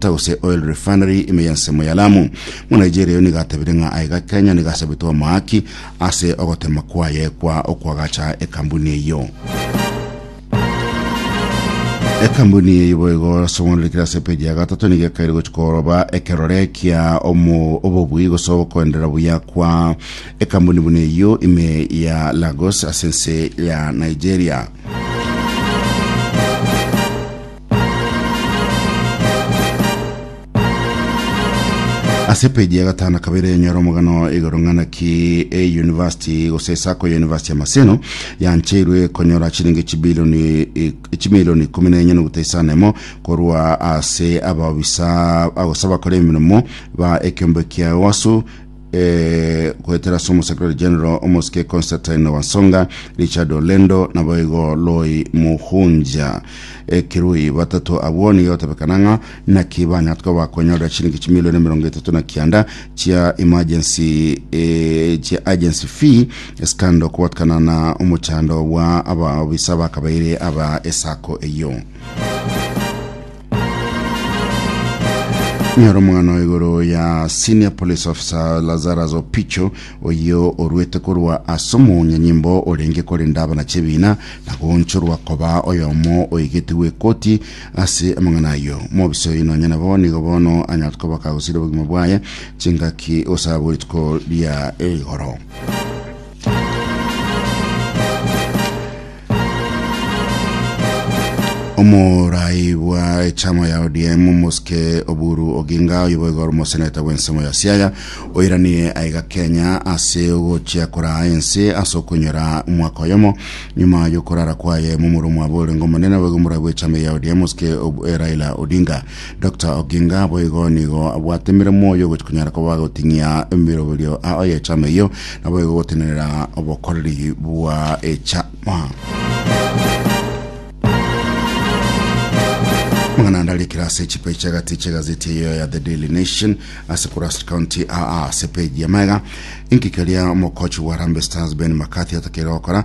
Mafuta gose Oil Refinery ime y'ensemo ya Lamu. Monigeria oyo nigo atabire ng'a aye ga Kenya nigo asabete omoaki ase ogotema kwaye kwa okwagacha ekambuni eyio. Ekambuni eyio boigo asong'onerekire ase epeji ya gatato nigo ekaire gochi koroba ekerore kia omo- obobui gose ogokoendera buya kwa ekambuni buna eyio ime ya Lagos ase ense ya Nigeria. Ase epeji ya gatano na kabere nyora omogano igoro ng'ana ki eyunivasiti gose sacco ya yunivasiti ya Maseno yancheirwe konyora chilingi echibilioni echimilioni ikumi na enye nogota isano emo korwa ase abaobisa agose abakora emirimo ba ekiombe kia Ewasu eh, goetera ase omosecretary general omosike constantine wansonga richard olendo nabo igo loi muhunja ekirui batato abwo nigo gotebekana ng'a naki banyara koba bakonyorera chiringi chimilioni emerongo etato na kianda chia emergency eh, chia agency fee esikando kobotkana na omochando bwa abaobisa bakabaire aba esako eyio Nyoro omwana igoro ya senior police officer Lazarus Opicho oyo orwete korwa ase omonyanyimbo orenge korenda abana chebina na gonchorwa koba oyomo oigetigwe ekoti ase amang'ana ayo mobisa oyo nonya nabo nigo bono anyarete koba kagosira obogima bwaye chingaki osaba rituko ria igoro omorai bwa echama ya odm omosike oburu oginga oyo boigo ore omoseneta bw'ensemo ya siaya oiranirie aiga kenya ase ogochia koraa ense ase okonyora omwaka oyomo nyuma yokorara kwaye momura omwabo orenge omonene boigo omorai bw'echama ya odm omosike Ob- eh, raila odinga Doctor Oginga boigo nigo abwatemire moyo gochia konyara koba goting'ia emeroberio ao y'echama eyio, naboigo gotenenera obokoreri bwa echama. Mang'ana ande arikire ase chipeji chi'agati chi'egazeti eyio ya The Daily Nation ase Kurasini County aa ase peji ya magega, inki keria omokochi wa Harambee Stars Ben McCarthy atakeire gokora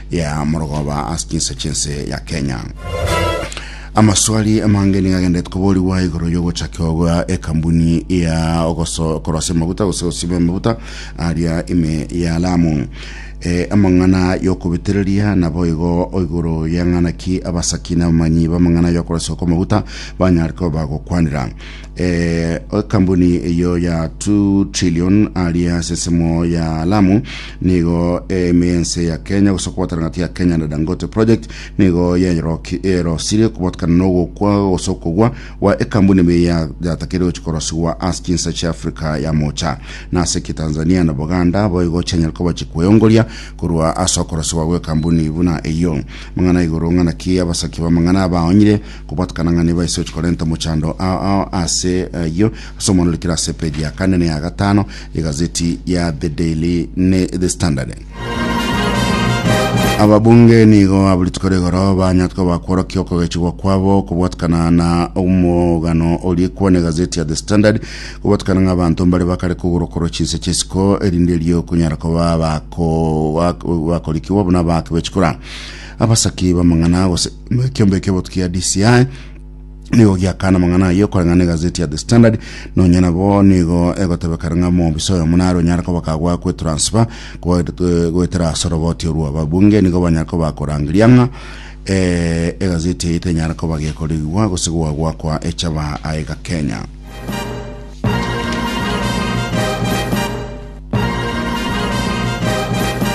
ya morogoba ase chinsa chinse ya Kenya. Amaswali amange niga agenderete koborigwa igoro y'ogochakio gwa ekambuni ya ogoso- korosia amaguta gose gosima amaguta aria ime ya Lamu. E, amang'ana y'okobitereria nabo igo igoro y'eng'anaki abasaki na abamanyi b'amang'ana y'okorosiwa kw'amaguta banyare koba bagokwanera. ekambuni eyo ya 2 trillion aria asesemo ya Lamu nigo emense ya Kenya gose kobwatana gati ya Kenya na Dangote project nigo yerosirie kobotkana nogokwa gose okogwa gwa ekambuni ime yatakeire gochi korosigwa as chinsa chia Africa ya mocha na ase ki Tanzania na Buganda boigo chianyare koba chikweyongoria korwa ase okorosigwa gwe kambuni buna eyio mang'ana igoro ng'ana ki abasaki bamang'ana abaonyire Kobatukana ng'a nibo ase ochi korenta mochando ao ase ayio ase omwanore kera ase page ya kane ne ya gatano egazeti ya The Daily ne The Standard. ababunge nigo aburituko rigoro banyatwa bakworokia okogechigwa kwabo kobwatikana na omogano orikwa ne gazeti ya the standard kobwatikana ng'a abanto mbare bakare kogorokorwa chinse chesiko erinde erio kunyara koba bakorikiwa buna bakebechikura abasaki bamang'ana gose Ekiombe ekia botuki ya DCI nigo giakana amang'ana ayio koreng'ana na egazeti ya The Standard nonya nabo nigo egotebekana ng'a omobisa oyomo nare onyare koba kagwa kwetransfer goetera ase oroboti orwo ababunge nigo banyare koba bakorangeria ng'a eh, egazeti eye tenyare koba gekorigigwa gose goa gwakwa echaba aega Kenya.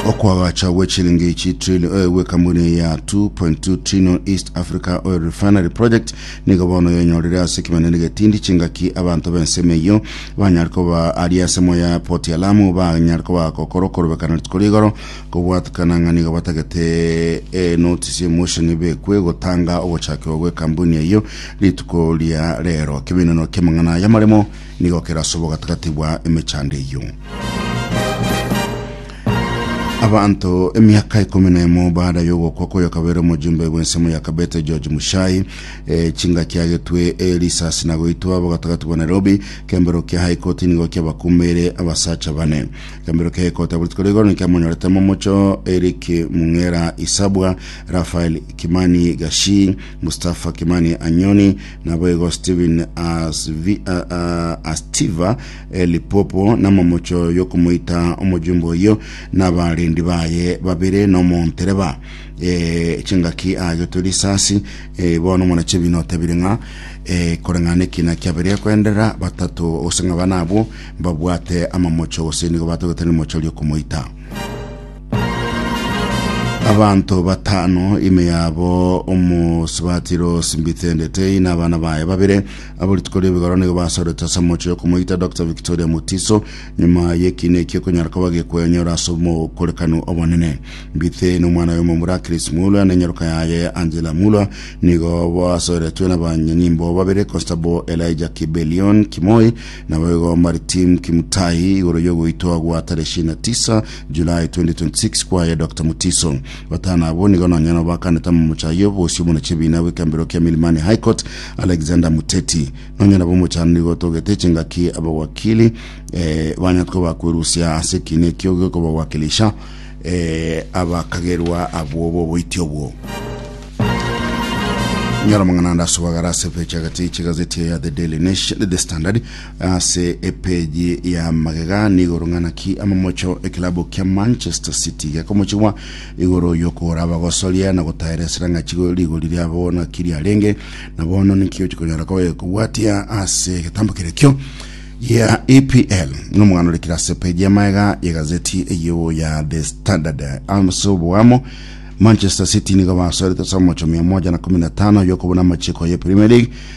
okwagacha gwe chilingi chi trillion eh, gwe kambuni eye ya 2.2 trillion east africa oil refinery project nigo bono yenyorire ase ekimanene getindi chingaki abanto b'ensemo eyio banyare koba ari ensemo ya poti ya lamu banyare koba gokora okorobekana rituko rigoro kobwatikana ng'a nigo batagete eh, notice emotion bekwe gotanga ogochakirwa gwe kambuni eyio rituko ria rero keminano kemang'ana y'amaremo Nigo kerasobo gatagati bwa emechando eyio. Abanto emiaka ikomi na emo baada y'ogokwa koyo kabere omojumbe bw'ensemo ya Kabete George Mushai eh, chinga kiagetwe eh, risasi na goitwa abo gatagati bwa Nairobi kembero kia High Court nigo kiabakumire abasacha bane kembero kia High Court abwo rituko rigoro nikiamonyorete momocho Eric Mung'era Isabwa Raphael Kimani Gashi Mustafa Kimani Anyoni Naboigo Stephen Asvi- a- a- Astiva eh, Lipopo namomocho yokomoita omojumbe oyio nabarendi baye babere nomontereba eh, chingaki agetwe risasi eh, bono omwanachebi notabire ng'a eh, koreng'ana ekina kiabere koenderera batato gose ng'a bana abwo mbabwate amamocho gose nigo batogete rimocho riokomoita Abanto batano ime yabo omosubati Rose Mbithendetei na abana baye babere abo rituko ri'ebigoro nigo basorete ase omochie okomoita Dr Victoria Mutiso nyuma y'ekiina ekio okonyara koba gekwenyora ase omokorekano obonene. Mbithe na omwana oye omomura Chris Mulwa na enyaroka yaye Angela Mulwa nigo basoretwe na abanyanyimbo babere Constable Elijah Kibelion Kimoi nabo igo Maritim Kimutai igoro y'ogoitwa gwa tarehe ishirini na tisa July 2026 kwaye Dr Mutiso. Batano abo nigo nonya nabo bakanete amamocha ayio obosio buna chibiina bw'ekembero kia Milimani High Court Alexander Muteti. Nonya nabo omochano nigo otogete chingaki abawakili eh, banyatwe bakwerusia ase ekiina ekio gekobawakilisha eh, abakagerwa abwo boboiti obwo. Nyora mang'ana ande asubagara ase epeche agati chigazeti ya The Daily Nation, The Standard Ase epeji ya magega nigoro ng'ana ki amamocho ekilabu kia Manchester City gekomochigwa igoro yokora abagosoria na gotayera esira ng'achi go- rigori riabo naki riarenge na bono niki ochikonyara kobe kobwatia ase egetambo kerekio gia EPL nomogano orekire ase peji ya magega ya gazeti eyio ya The Standard ase oboamo Manchester City nigo basorete ase amamocho mia moja na kumi na tano yokobuna amachiko ye Premier League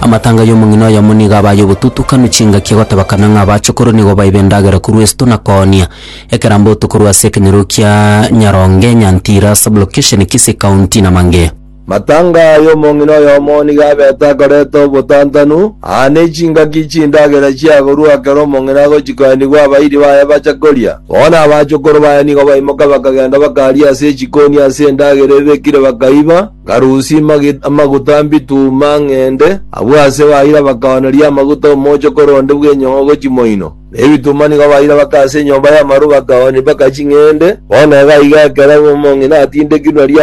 Amatanga y'omong'ina oyomo nigo aba ay'obotutukanu chingaki agotebakana ng'a abachokoro nigo baibe endagera korwa esto na koonia. Ekerambe oto korwa ase ekenyoro kia Nyaronge, Nyantira, Sublokesheni, Kisii County na mangea. Matanga y'omong'ina oyomo nigo abete akoreta obotantanu, aa ne chingaki chindagera chiagorwa ekero omong'ina agochikoenigwa abairi baye bacha koria. Bono abachokoro baye nigo baimoka bakagenda bakaria ase echikoni ase endagera ebekire bakaiba. Karusie amaguta mbituma ng'ende. Abwo aase baira bakaooneria amaguta omochokoro onde bw'enyongo chimoino, na ebituma nigo baira bakaa ase enyomba y'amaru bakaoonia bakachi ng'ende. Bono iga iga ekero omong'ina atindekirwe nario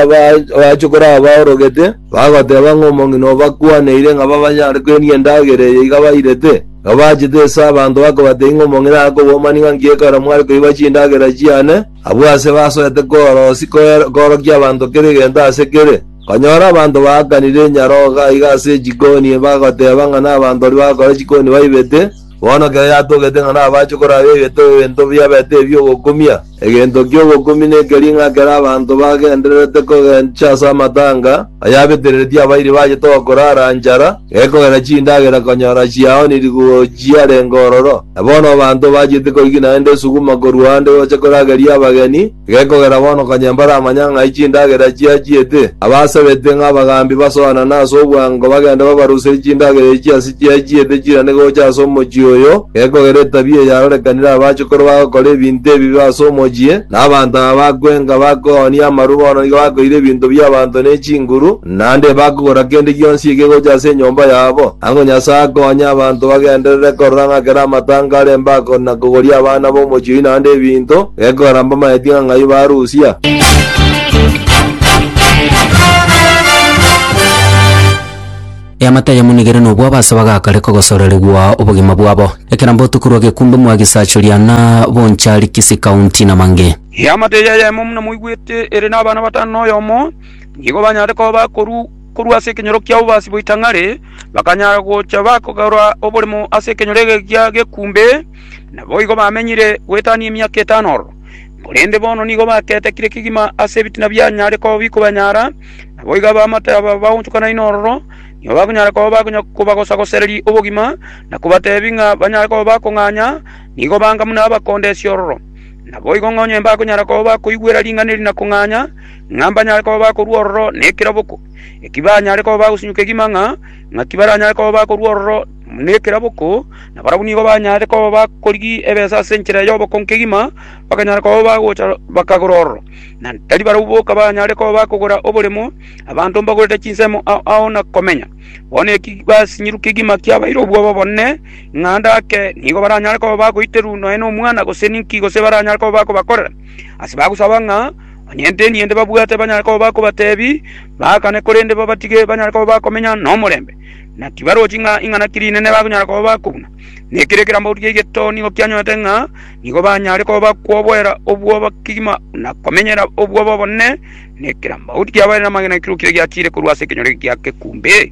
abachokoro aba orogete, bagoteeba ng'a omong'ina obakwaneire ng'a babanyare kwenia endagera eye iga bairete. Iga bachete ase abanto bakabateebia ng'a omong'ina akobomani ng'a nki ekero mware koiba chindagera chiane, Abwo aase basoete kororosia koorokia abanto kera egento aase kere. Bakanyora abanto baakanire enyarogo aiga ase chikoni, bagoteeba ng'a nabanto baria bagokora chikoni baibete. Bono kera yatogete ng'a nabache koraba egete ebinto biabete ebi'ogokumia. Egento ki'ogokumia nekeria ng'a kera abanto bagendererete kogencha ase amatanga, bayabetereretie abairi baye toba korara nchara, Gekogera chindagera konyora chiao nirigoochia renge ororo, na bono abanto bachete koigina naende esuguma korwa ande gocha korageria abageni, gekogera bono konya mbaramanya ng'ai chindagera chiachiete, abasabete ng'a abagambi basoanane ase obwango bagende babaruserie chindagera echi ase chiachiete chirane gocha ase omochie oyo, gekogera etabia eyarorekanire abachukoro bagokora ebinto ebibe ase omochie, na abanto aba bakwenga bakoonia amaru bono nigo bakoira ebinto bi'abanto ne chinguru, Naende bakogora kende gionsi ekegocha ase enyomba yabo, ang'o Nyasae akonye abanto bagenderere korora ng'a kera amatanga are embako na kogoria abana b'omochie oyio naende ebinto, gekogera mbamaeti ng'a ng'ai barusia. Eamate ayamonigere nobua abasaba gakare kogosoreregwa obogima bwabo. Ekera mbotuko rwa gekumbe mwa Gisachoria na Bonchari Kisii County na mange. Eamate eye ayemo muna moigwete ere nabana batano na oyomo nigo banyare koba bakoru korwa ase ekenyoro kia obobaasi bwa ritang'ani, bakanyara gocha bakogora oborimo ase ekenyoro egeekia gekumbe, naboigo bamenyire goetania emiaka etano ororo. Korende bono nigo bakeetekire kegima ase ebitina bianyare koba bikobanyara, naboigo abaamate aba baonchokanaine ororo nigo bakonyara koba bakonya kobagosagosereria obogima, na kobateebia ng'a banyare koba bakong'anya, nigo banga buna abakondesia ororo. Naboigo ng'onye mbakonyara koba bakoigwera ring'ana eri na kong'anya, ng'a mbanyare koba bakorua ororo nekeraboko, eki banyare koba bagosinyuka egima ng'a ng'aki baranyare koba bakorua ororo nekeraboko, na barabwo nigo banyare koba bakorigia ebesa ase enchera y'oboko nkegima, bakanyara koba bagocha bakagora ororo, na tari barabwo boka banyare koba bakogora oboremo, abanto mbagorete chinsemo ao ao na komenya. Bono eki basinyirwe kegima kiabaire obwoba obonene, ng'a ndake nigo baranyare koba bagoiterwa nonya nomwana gose ninki gose baranyare koba bakobakorera, ase bagosaba ng'a. Onye nte niye ndebabwate banyare koba bakobatebi baakane korende babatige banyare koba bakomenya nomorembe, na tibarochi ng'a ing'anaki rinene bakonyara koba bakobuna. Nekiria ekerambe gotukia egeto nigo kianyorete ng'a nigo banyare koba bakwoboera obwoba kegima na komenyera obwoba obonene na ekerambe goti kiabaeire namang'ana ekero kire giachiire korwa ase ekenyoro eke gia kekumbe.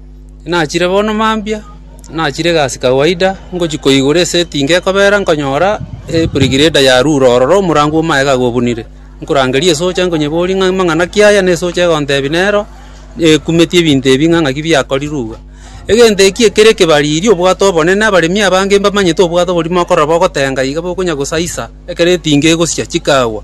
Nachire bono mambia, nachire egasi kawaida, ngochia koigora eseti inga ekobera, nkonyora ebregrade yarure ororo omorango o magega gobunire. Nkorangeria esocha nkonyeberia ng'a amang'ana ki aya? Ne esocha egontebi nero ekumeti ebinto ebi ng'a ng'aki biakorirwe iga. Egento eki ekere ekebariri obwate obonene, abaremi abange mbamanyete obwate oborimo okorora bogotenga iga bokonya gosaisa ekero etinga egosia chikagwa.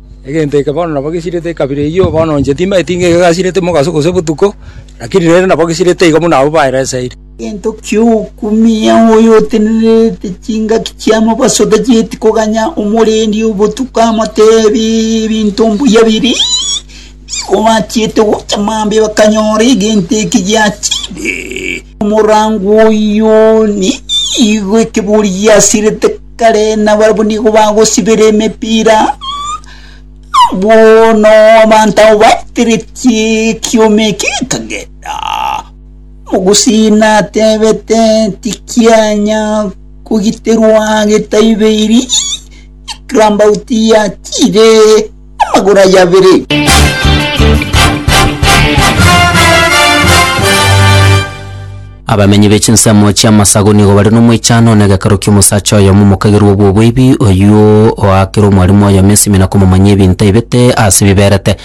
Egento eke bono nabo gesirete ekabira eyio, bono inche timbaeti ng'a egegasirete mogaso gose botuko, lakini rende nabo gesirete igo buna abwo baereseire. Egento ki'okumia oyo otenerete chingaki chi'amabaso otacheti koganya omorendi o botuko amotebe ebinto mbuya biria nigo bachiete gocha mambia bakanyora egento eke giachire. Omorango oyio nigo ekebori giasirete. Kare nabarabwo nigo bagosibera emepira, bono abanto abwo bateretie ekioma eke ekagenda. Omogusii natebete, Tikianya kogiterwa getaibeiri, Ekirambaut yatiire. amagoro aye abere. Abamenyi be chinsemo chi'amasago nigo bare n'omwechano na egeakero ki'omosacha oyomo omokagerwa obw'oboibi, oyio oaakera omwarimu oyomo ensimi na komomanyia ebinto aibete ase biberete.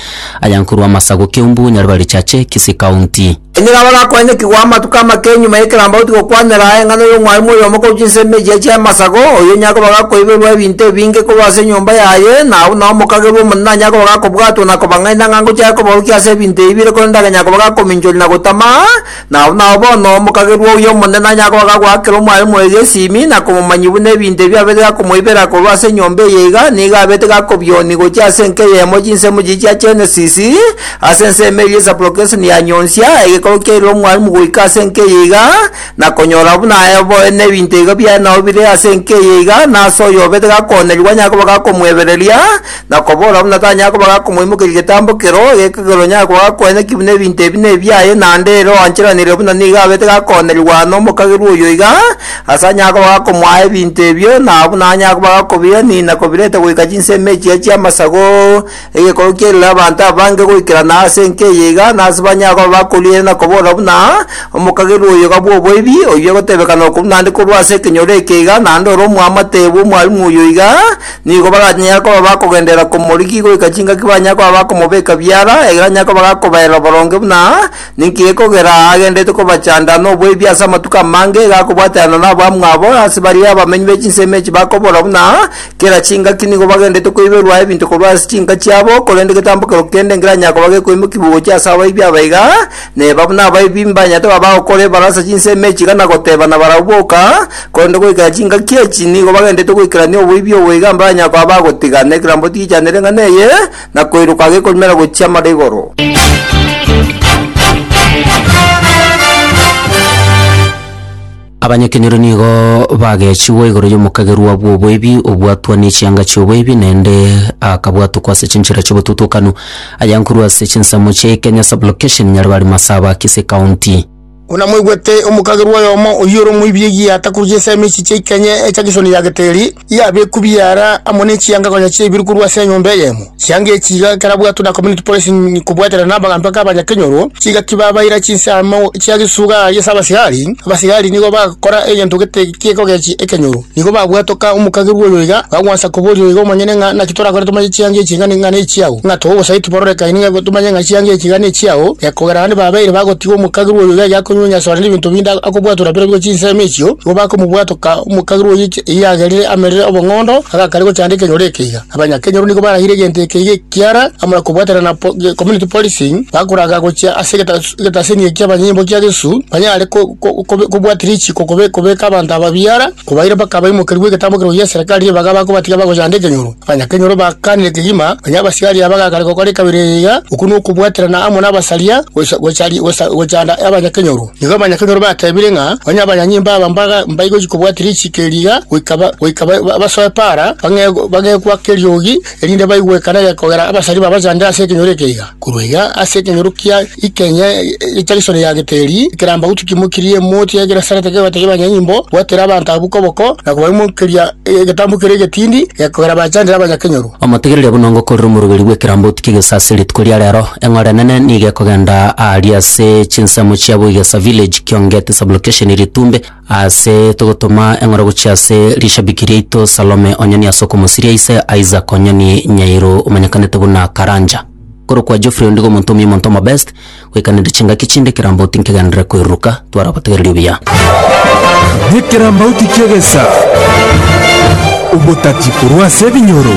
Aya nkorwa amasago Keumbu, Nyaribari Chache, Kisii County. Enyora abarakwanyerekigwa amatuko amake nyuma y'ekerambe gotigokwanera eng'ana y'omwarimu oyomo korwa chinsemo echia chi'amasago, oyio onye akoba gakoiberwa ebinto ebinge korwa ase enyomba yaye, na abwo nao omokagerwa Omonene onye akoba gakobwatwa na kobang'aina ng'a ngochia aye kobarukia ase ebinto ebibire korende agenya koba gakominchoria na gotama, na abwo nao bono omokagerwa oyio Omonene onye akoba gagoakera omwarimu oyo gesimi, na komomanyia buna ebinto ebio abete gakomoibera korwa ase enyomba eye iga, nigo abete gakobioni gochia ase enka eyemo chinsemo chiria chia Genesis, Ase ensemo eria Esapulokeso niyanyonsia egekogwa kiaire omwalimu goika ase enka eye iga, na konyora buna aye oboe nebinto iga biaye nao bire ase enka eye iga, na ase oyo obete gakoonerigwa anyare koba gakomoebereria, na kobora buna tanyare koba gakomoimokeria getambo kero, egekogera onyare koba gakoeneki buna ebinto ebi nebiaye, naende ere oancheranire buna nigo abete gakoonerigwa aa nomokagerwa oyo iga, ase anyare koba gakomoa ebinto ebio, na buna anyare koba gakobirenina kobireta goika chinsemo echiya chi'amasago, Egekorwa kiairire abanto abange goikerana ase enka eye iga, nase banyare koba bakorigereria na koboora buna omokagerwa oyoga bw'oboibi, oyio egotebekana okwo buna ande korwa ase ekenyoro eke iga, naende ore omwamate bw'omwarimu oyio iga, nigo baranyare koba bakogenderera komorigi goika chingaki banyare koba bakomobeka biara, egira anyare koba gakobaerera boronge buna ninki gekogera agenderete kobachanda noboibi ase amatuko amange, iga akobwaterana nabamwabo ase baria abamenyi be chinsemo echi bakoboora buna Kera chingaki nigo bagenderete koiberwa ebinto korwa ase chinka chiabo, korende getambokero kende nkeranyare koba gekoimokigwa gochia ase abaibi aba iga, neba buna abaibi mbanyarete koba bagokora ebarasa chinsa emechi iga na gotebana barabwo boka, korende goikera chingaki echi nigo bagenderete goikerania oboibi obo iga mbaranyare koba bagotiga, na ekerambo tigichanire ng'ana eye, na koiroka gekorumera gochia amara igoro. Abanyakenyoro nigo bagechigwa igoro y'omokagerwa bw'oboibi, obwatwa nechianga chi'oboibi, naende akabwatokwa ase chinchera chi'obotutukanu, ayankorwa ase chinsemo chia Ikenya Sub-location, Nyaribari Masaba, Kisii County. Buna mwaigwete, omokagerwa oyomo oyio ore omoibi egiya atakuruche ensemo echi chia Ikenya echa Kishoni ya Geteri, Yabekwa ebiara amo ne chianga konya chiaibire korwa ase enyomba eyemo. Chianga echi iga ekerabwatwe na Community Policy kobwatera namagambi ake abanyakenyoro, chigaki babaira chinsemo chia gesuga ase abasigari. Abasigari nigo bagokora egento gete gekogechia ekenyoro. Nigo babwatwe ka omokagerwa oyo iga, bagwansa koboria iga omonyene ng'a naki torakore tomanye chianga echi iga nigo nechiao. Ng'a tobe obosaiti bororekaine ng'a tomanye ng'a chianga echi iga nechiao, ekogera naende babeire bagotiga omokagerwa oyo iga egiakonywenya ase onde nebinto binde akobwatwa na biro bigo chinsemo echio, nigo bakomobwatwa ka omokagerwa oyo Eyagerire amerire obong'ondo, agakaria gochanda ekenyoro ekeiga. Abanyakenyoro nigo barahire egento ekeiga ekiara amo na kobwaterana na community policing, bakoraga gochia ase egetaseni eki abanyimbo kia Yesu banyare kobwatia richiko kobeka abanto aba biara, kobaira mpaka abaimokerigwe egetambo keroyio gi'eserekari ebaga bakobatiga bagochanda ekenyoro. Onye kenyoro bagakanire kegima, onye abasiaria bagakana gokora ekabera eyia, okwo nokobwaterana amo nabasaria, gocha gochanda abanyakenyoro. Nigo abanyakenyoro batebire ng'a onye abanyanyimbo aba mbaigochi kobwatera richiiko eri iga, goika basoe para, bang'e gwaka eriogi, erinde baigwe ekana eye kogera abasaria babachandere ase ekenyoro eke iga. Korwa iga ase ekenyoro kia ikenyia egecha gesore ya Geteri, ekerambagutu kimokirie emoti ya Genesarete kegotegia abanyanyimbo gwateera abanto abwo koboko na kobaimokeria egetambo keria egetindi gekogera bachandere abanyakenyoro. Omotegereria buna ngokorera omorogeri bw'ekerambauti kegesa ase rituko ria rero, eng'ora enene nigo ekogenda aaria ase chinsemo chia Boigesa Village, Kiongeti Sublocation, Ritumbe, Aase togotoma eng'oro gochia ase rishabiki riaito Salome Onyoni ase okomosiria ise Isaac Onyoni Nyairu omanyekanete buna Karanja. Korokwa Geoffrey ondigo omonto omuya omonto omo best goikaneria chingaki chinde ekerambauti nkegenderere koiruruka twaragotegereria obuya. Nekerambauti ki'egesa, obotati korwa ase ebinyoro.